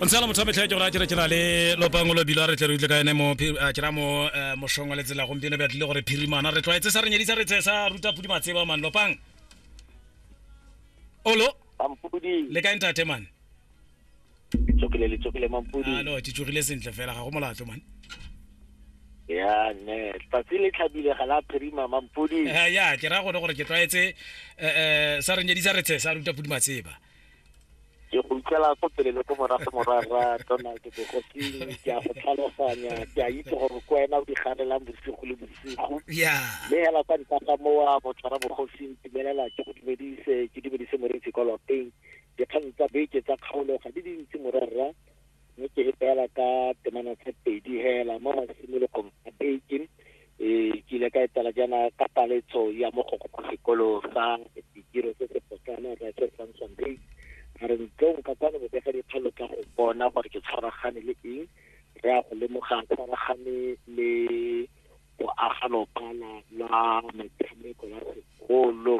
o ntse la motho a metlha ke gore a kere ke na le lopango lo bilo a re tle re utlwe ka ene mo a kera mo eh, moshong wa letsela gompieno be tlile gore phirimana re tlwaetse sa re nyedisa re tse sa ruta pudi matseba man lopang olo mampudi le kae ntate man tsokile le tsokile mampudi alo ke tsogile sentle fela ga go molato man ya ne tsatsi le tlhabile ga la phirima mampudi Eh, ya ke ra gone gore ke tlwaetse eh, eh, sa re nyedisa re tse sa ruta pudi matseba ke go ikela ko pele le ko morago morara donald bogosing ke a go tlhaloganya ke a itse gore ko wena o di ganelang bosigo le bosigo mme hela kwa ntlaka mowa motshwara bogosing timelela ke go dumedise ke dumedise moreetsi kwa lapeng dikgang tsa beke tsa kgaolo ga di dintsi morara mme ke e beela ka temana tse pedi hela mo masimologong a beke um ke ile ka etela jaana ka paletso ya mogoko kwa sekolo sa ditiro se se potlana ra se samson bay a re ntlong ka kwano bobega dikgalo ka go bona gore ke tshwaragane le eng re ya go lemoga tshwaragane le boagalopala la metshameko ya sekolo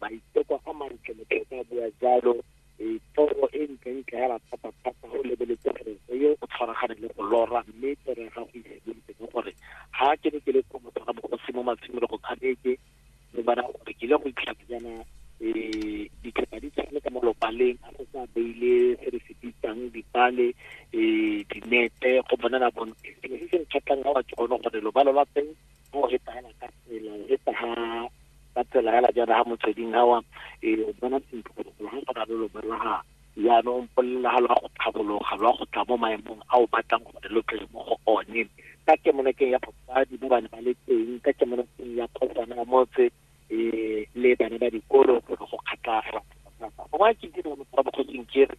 maiteko a mantle motho ka bua jalo e toro e ntlentle ya ratata-thata o lebeletse gore o yo o tshwaragane le go lora mme toro ya gago e simolotse ka gore ga ke ne ke le ko motho ga bogosi mo matshimolo go kgabeke mme bana gore ke ile go itlhaka jaana um ditlhopha di tshwane ka mo lopaleng a go sa beile se re se bitsang dipale um dinete go bonana bontle sengwe se se nkgatlhang ga wa ke gone gore lobalo la teng go re tsaya ka tsela e tsa ka tsela ya la jana ha motsweding hawa e bona tsinto go go na le lo balaga yaanong polelela ga lwa go tlhabologa lwa go tla mo maemong a o batlang gore lo tle mo go one ka kemonokeng ya batsadi ba bane ba le teng ka kemonokeng ya kopana motse eh, le bana ba dikolo go go kgatlaga go ba ke dira mo kwa bokgotsing ke re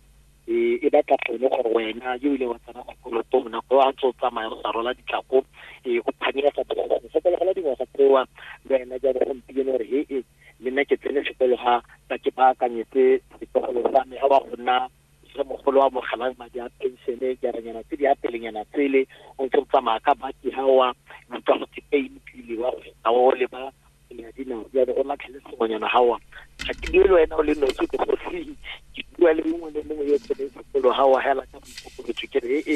eh, e batla gone gore wena yo ile wa tsena sekolotong nako a tso tsamaya go sa rola ditlako eh, o phanyega go sokologela dingwaga tsewa le wena jalo gompieno gore he e le nna ke tsene sekolo ga ba ke baakanyetse setogolo sa me ga ba go nna le mogolo wa mogalang madi a penšene jaranyana tse di apelenyana tsele o ntse o tsamaya ka baki ga wa utlwa go tepeine pele wa a o le ba ya dinao ya go latlhele sengwenyana ga wa ga ke le wena o le nosi ke go se ke bua le mongwe le mongwe yo tsene sekolo ga wa hela ka boikokobetso ke re e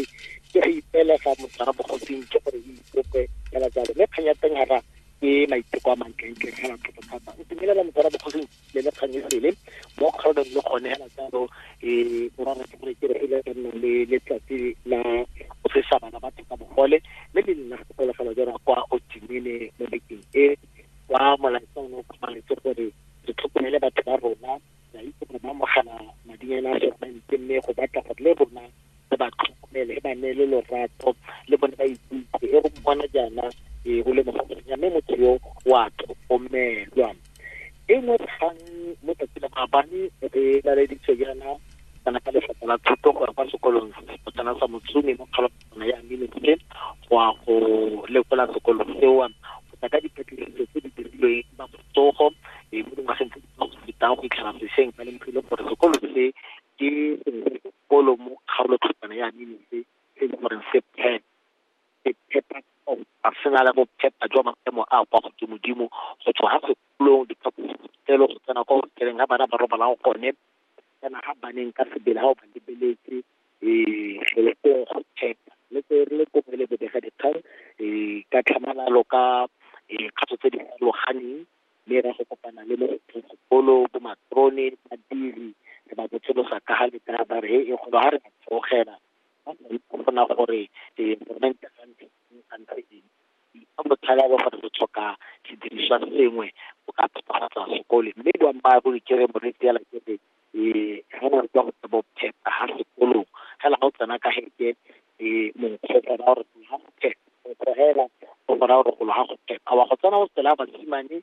ke re ipela fa motho ga bogosing ke gore e ikope hela jalo mme kganya teng ga ke maiteko a mantle ntle ga thata thata o tumelela motho ga bogosing le le kgang e sele mo kgaolong le gone hela jalo um borara ke gore ke re ile ka nna le letsatsi la go fesa bana batho ka bogole mme le nna gopologelo jara kwa otimene mo bekeng e kwa molaetsa o ne o kgomaretse gore re tlhokomele batho ba rona ra itse gore ba mogala madinyana a segmente mme go batla gore le rona le ba tlhokomele e ba neele lorato le bone ba ikutlwe e go bona jaana e go le mogonya mme motho yo wa tlhokomelwa e nngwe kgang mo tsatsi la maabane re laleditswe jaana kana ka lefapha la thuto go ya kwa sekolong sepotsana sa motsumi mo kgologana ya minitse go ya go lekola sekolo seo go tla ka dipatlisiso tse di dirilweng ba botsogo e mo dingwageng tse di fetang go fitlhela sešweng ba lemogile gore sekolo se ke Polo mo kgaolokhutshwane ya Nineve se e leng gore se phepa, se phepa tota, se na le bophepa jwa maemo a a kwa godimodimo, go tswa ga kgopolong, diphaposiborutelo, go tsena kwa hoteleng ga bana ba robalang gone, go tsena ga baneng ka sebele ga o ba lebeletse, ee, gong go phepa. Le tse re le kobo le bobegadikgang, ee, ka tlhamalalo ka, ee, kgato tse di farologaneng, mme e ra go kopana le mogopolo bo matrone badiri re ba botsolosa ka ga letara ba re he e golo ga re tsogela ba sa itse gona gore eh, government ga ntse eng ga ntse eng ka botlhala le gore re tlhoka sediriswa sengwe go ka phepagatsa sekole mme boammaaruri ke re moretse ya lakete um re na re tswa go tsa bo phepa ga sekolong fela ga o tsena ka heke um monkgo go raya gore ga go phepa monkgo hela o go raya gore golo ga go phepa wa go tsena o tsela basimane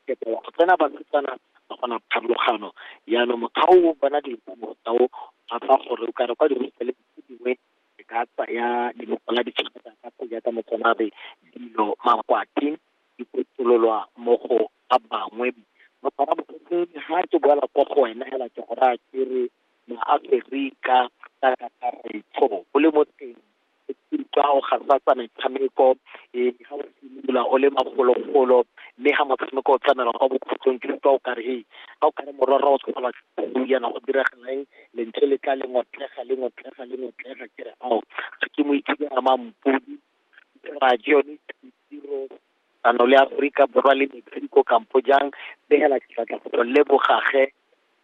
phepa wa go tsena basetsana ba gona pharologano jaanong mokgwa o bona dilo tsao ga tsa gore o kare kwa dihostele tse dingwe e ka tsaya leloko la ditšhelete ka go jaaka motsanabe dilo makwati di kotololwa mo go ba bangwe ba bangwe ba ke ha ke boela kwa go wena hela ke go raya ke re maaferika ka kakaretso o le mo teng ka go gafatsa metshameko e ga o simolola o le magologolo mme ga motshameko o tlamela kwa bokhutlong ke utlwa o kare e ga o kare mororo o tshwana go yana go diragalang lentswe le tla le ngotlega le ngotlega le ngotlega ke re ao ga ke mo ithuta mampodi ra ke yone tiro ano le Aforika Borwa le Mexico kampo jang begela diatla go tlo leboga ge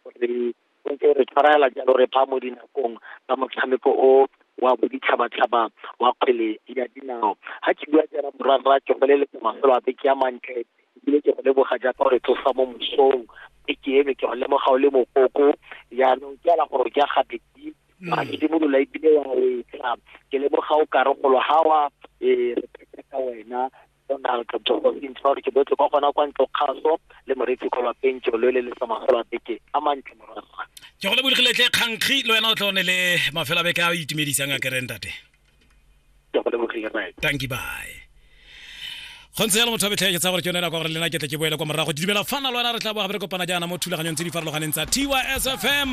gore o ntse re tshwarela jalo re ba mo dinakong tsa motshameko o wa boditšhabatšhaba wa kgwele ya dinao ga ke bua jara morwarra ke go leletsa mafelo a beke ya mantle ebile ke go leboga jaaka gore tlosa mo mosong beke eno ke go lemoga o le mokoko jaanong ke ala gore ke ya gabedi mm. a simolola ebile wa wetsa ke leboga o kare golo ga wa e re pheta ka wena donald jogo sentse gore ke botle kwa gona kwa ntlo kgaso le moretsi kgolo pentso lo le le sa magolo a beke a mantle morwa ke go le bolegiletle kgankgi le wena o tla one le mafelo a beke a o itumedisang a kerentate ke go lebogile rrae thank you bye go ntse jalo motho wa betlheke tsa gore ke yone nako gore lena ke tle ke boele kwa morago di dumela fana lwena re tla boa gape re kopana jaana mo thulaganyong tse di farologaneng tsa tysfm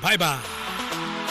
bye bye